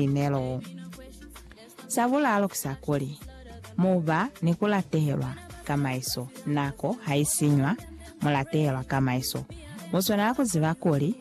Inelo. Sa bulalo ki sa kuli, mu ba ni ku latehelwa ka maiso. Nako ha i sinywa, mu latehelwa ka maiso. Mu swanela ku ziba kuli,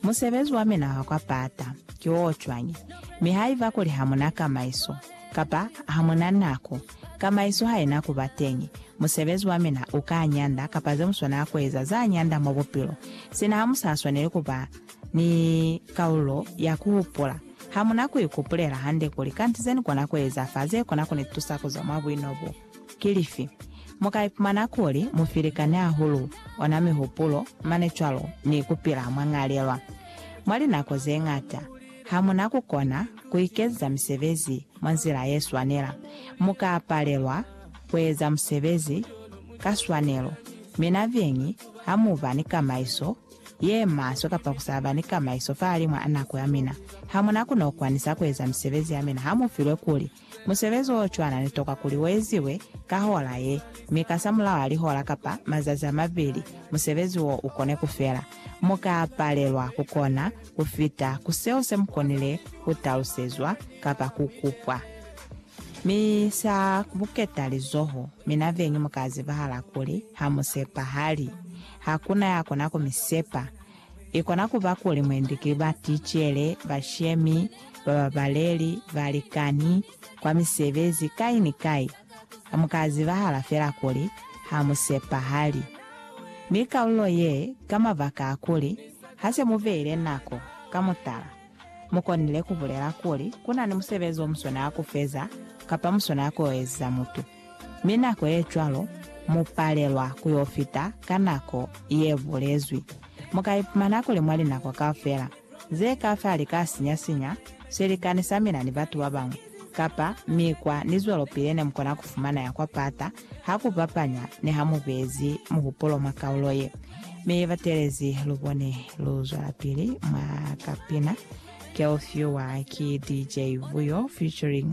Musebezi wa mina wa kwa pata ki wo cwañi? Mi haiba kuli ha mu na ka maiso, kapa ha mu na nako, ka maiso ha i na ku ba teñi, musebezi wa mina u ka nyanda kapa ze mu swanela ku eza za nyanda mwa bupilo. Sina ha mu sa swaneli ku ba Ni kaulo ya ku hupula. Ha mu na ku ikupulela hande kuli kanti ze ni kona ku eza fa ze kona ku ni tusa ku zwa mwa buino bo. Ki lifi? Mu ka ipumana kuli mu filikani hahulu ona mihupulo, mane cwalo ni ku pila mwa ñalelwa. Mwa linako ze ñata, ha mu na ku kona ku ikezisa misebezi mwa nzila ye swanela. Mu ka palelwa ku eza musebezi ka swanelo. Mi nabeñi, ha mu ba ni kamaiso ye maswe kapa ku sa ba ni kamaiso fahalimw'a nako ya mina. Ha mu na ku n'o kwanisa ku eza misebezi ya mina ha mu filwe kuli, Musebezi wo cwana ni tokwa kuli wo eziwe ka hola ye, mi kasamulaho a lihola kapa mazazi a mabili musebezi wo u kone ku fela. Mu ka palelwa ku kona ku fita ku seo se mu konile ku talusezwa kapa ku kupwa. Mi sa buketa lizoho, mina beñi mu ka zibahala kuli ha mu sepahali. Ha ku na ya kona ku mi sepa. I kona ku ba kuli mwendi ki baticele, bashemi, bababaleli, balikani, kwa misebezi, kai ni kai. Ha mu ka zibahala fela kuli ha mu sepahali. Ni kalulo ye, ka mabaka a kuli, ha se mu beile nako, ka mutala, mu konile ku bulela kuli ku na ni musebezi o muswanela ku feza kapa muswanela ku yo eziza mutu. Mi nako ye cwalo mu palelwa ku yo fita ka nako ye bulezwi. Mu ka ipumana kuli mwa linako kaufela ze ka fa li ka sinya-sinya swilikani sa mina ni batu ba bañwi, kapa mikwa ni zwelopili ne mu kona ku fumana ya kwa pata ha ku bapanya ni ha mu bezi muhupulo mwa kaulo ye. Mi batelezi lu bone lu zwelapili mwa kapina Girl Fewer ki DJ Vuyo featuring